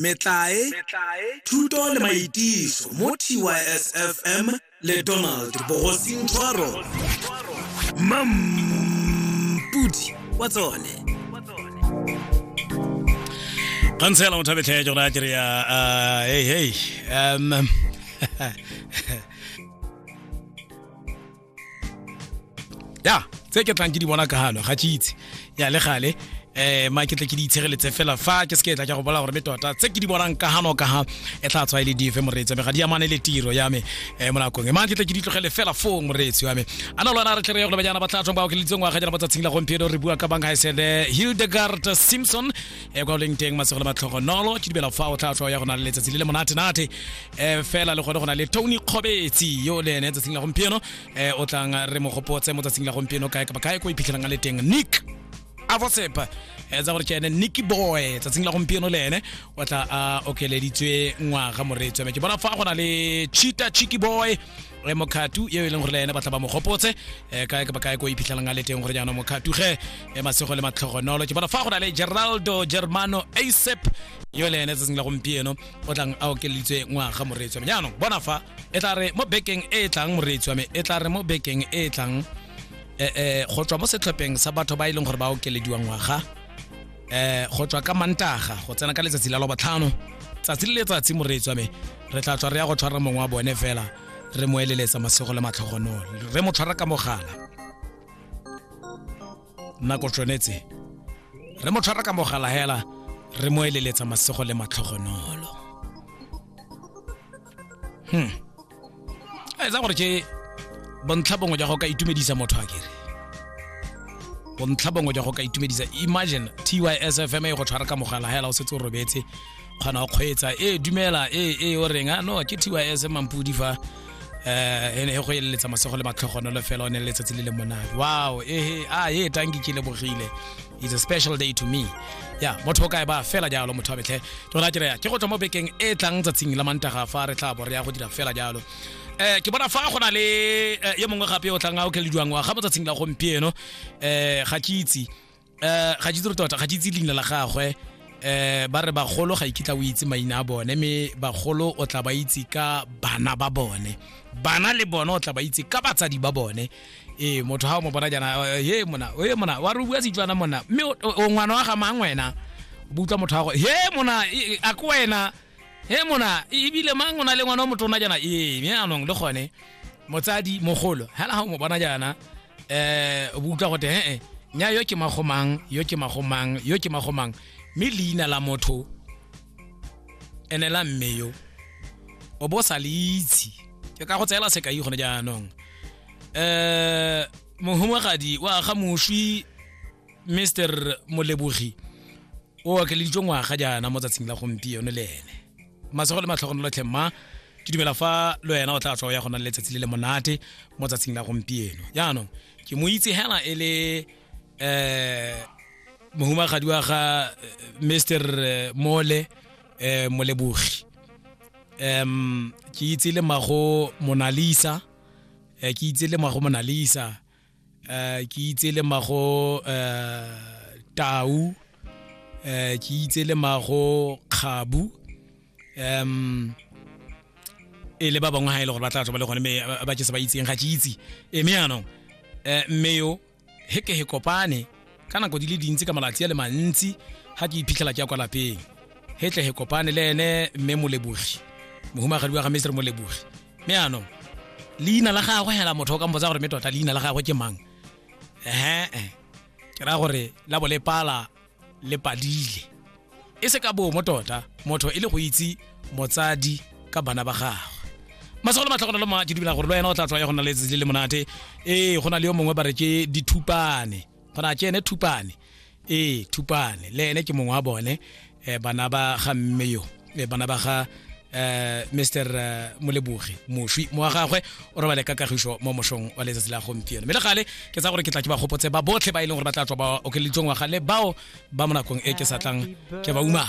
metlae thuto le maitiso mo tysfm le donald bogosing tshwaro mampudi wa tsone kgansela motho a betlhee jona a kereya hey hey um ya tse ke tlang ke di bona ka galo ga ke itse ya le gale eh ma ke tle ke di itshireletse fela fa ke se ke tla ke go bola gore me tota tse ke di bonang ka hano ka ha e tla tswa ile e dife moreetsi me ga di amane le tiro ya me eh mo nakong e ma ke tle ke di tlogele fela fo moreetsi wa me ana lona re tle re go le banyana ba tla tswa ba o ke litseng wa ga jana ba tsatsing la gompieno re bua ka bang ha isele Hildegard Simpson e kwa leng teng masego le matlhogo nolo ke dibela fa o tla tswa ya go na le letsatsi le le monate nate um fela le gone go na le tony kgobetsi yo le ene tsatsing la gompieno um o tlang re mo gopotse mo tsatsing la gompieno kae kapa kae ko iphitlhelang a le teng nick a bosepa um tsa gore ke ene nicky boy tsatsing la gompieno le ene o tla a okeleditswe ngwaga moreetswe me ke bona fa go na le cheeta chicky boy re mokhatu eo e leng gore le ene ba tla ba mo gopotse um kae kapa kae ko iphitlhelang a le teng gore jaanong mokhatu ge um masego le matlhogonolo ke bona fa go na le geraldo germano asep yo le ene tsatsing la gompieno o tlang a okeleditswe ngwaga moreetsi wa me jaanong bona fa e tla re mo bekeng e e tlang moreetsi wa me e tla re mo bekeng e e tlang eh, eh, go tswa mo setlhopheng sa batho ba e leng gore ba okelediwa ngwaga eh go tswa ka mantaga go tsena ka letsatsi la lobotlhano tsatsi le letsatsi moreetsi wa me re tla tswa re ya go tshwara mongwe wa bone fela re mo eleletsa masego le matlhogonolo re mo tshwara ka mogala nako tshwanetse re mo tshwara ka mogala hela re mo eleletsa masego le matlhogonolo hmm a etsa gore ke bontlha bongwe jwa go ka itumedisa motho a kere bontlha bongwe jwa go ka itumedisa imagine tysfm e go tshwara ka mogala hela o setse o robetse kgona go kgweetsa e dumela e e o reng a no ke tys mampudi fa eh ene e go eleletsa masego le matlhogonolo fela o ne letsatsi le le monate wow ehe a e tanki ke lebogile it's a special day to me ya motho o kae ba fela jalo motho wa betlhe tona ke reya ke go tswa mo bekeng e tlang tsatsing la mantaga fa re tla bo re ya go dira fela jalo eh ke bona fa go na le eh, yo mongwe gape o tlang a o kelediwang wa ga mo tsatsing la gompieno eh ga ke itse um ga ke itse tota ga ke itse leina la gagwe um ba re bagolo ga ikitla o itse maina a bone mme bagolo o tla ba itse ka bana ba bone bana le bone o tla ba itse ka batsadi ba bone ee motho ga o mo bona jana he mona e mona wa re o bua setswana mona mme o ngwana wa ga mang wena bo utlwa motho gago he mona a ko wena he mona ebile mang o na le ngwana o motona jana ee mme anong le gone motsadi mogolo hela ga o mo bona jana eh o utlwa gote he eh, nya yo ke magomang yo ke magomang yo ke magomang mme leina la motho ene la mme yo o bo sa le itse ke ka go tseela sekai gone jaanong um mohumagadi wa ga moswi mr molebogi o okeleditswe ngwaga jaana mo tsatsing la gompieno le ene matsogo le matlhogono lotlhe mma ke dumela fa lo wena o tla tswa ya go na le letsatsi le le monate mo tsatsing la gompieno jaanong ke mo itse hela e le um mohumagadi wa ga mr mole um molebogi um ke itse le mago monalisa um ke itse le mago monalisa uh, ke itse le mago uh, tau uh, ke itse le mago kgabu um e le ba bangwe ga e le gore ba tla tswa ba le gone me ba ke se ba itseng ga ke itse e me yanong um mme yo he ke he kopane ka nako di le dintsi ka malatsi a le mantsi ga ke iphitlhela ke ya kwa lapeng he tle he kopane le ene mme molebogi mohumagadi wa ga mesere molebogi mme anong leina la gagwe hela motho o ka mpotsa gore me tota leina la gagwe ke mang ee ke raya gore la bo le pala le padile e se ka bomo tota motho e le go itse motsadi ka bana ba gagwe masego le matlhogonolo ma ke dumela gore le wena o tla tlwa ya go nna le letsatsi le le monate ee go na le yo mongwe ba re ke dithupane go na tse ene thupane ee thupane le ene ke mongwe wa bone um bana ba ga mme yo e, bana ba ga um mr eh, molebogi moswi mo wa gagwe o robale ka kagišo mo mosong wa letsatsi la gompieno mme le gale ke tsa gore ke tla ke ba gopotse ba botlhe ba e leng gore ba tla tswa ba okeleditsong wa gale bao ba mo nakong e ke sa tlang ke ba umang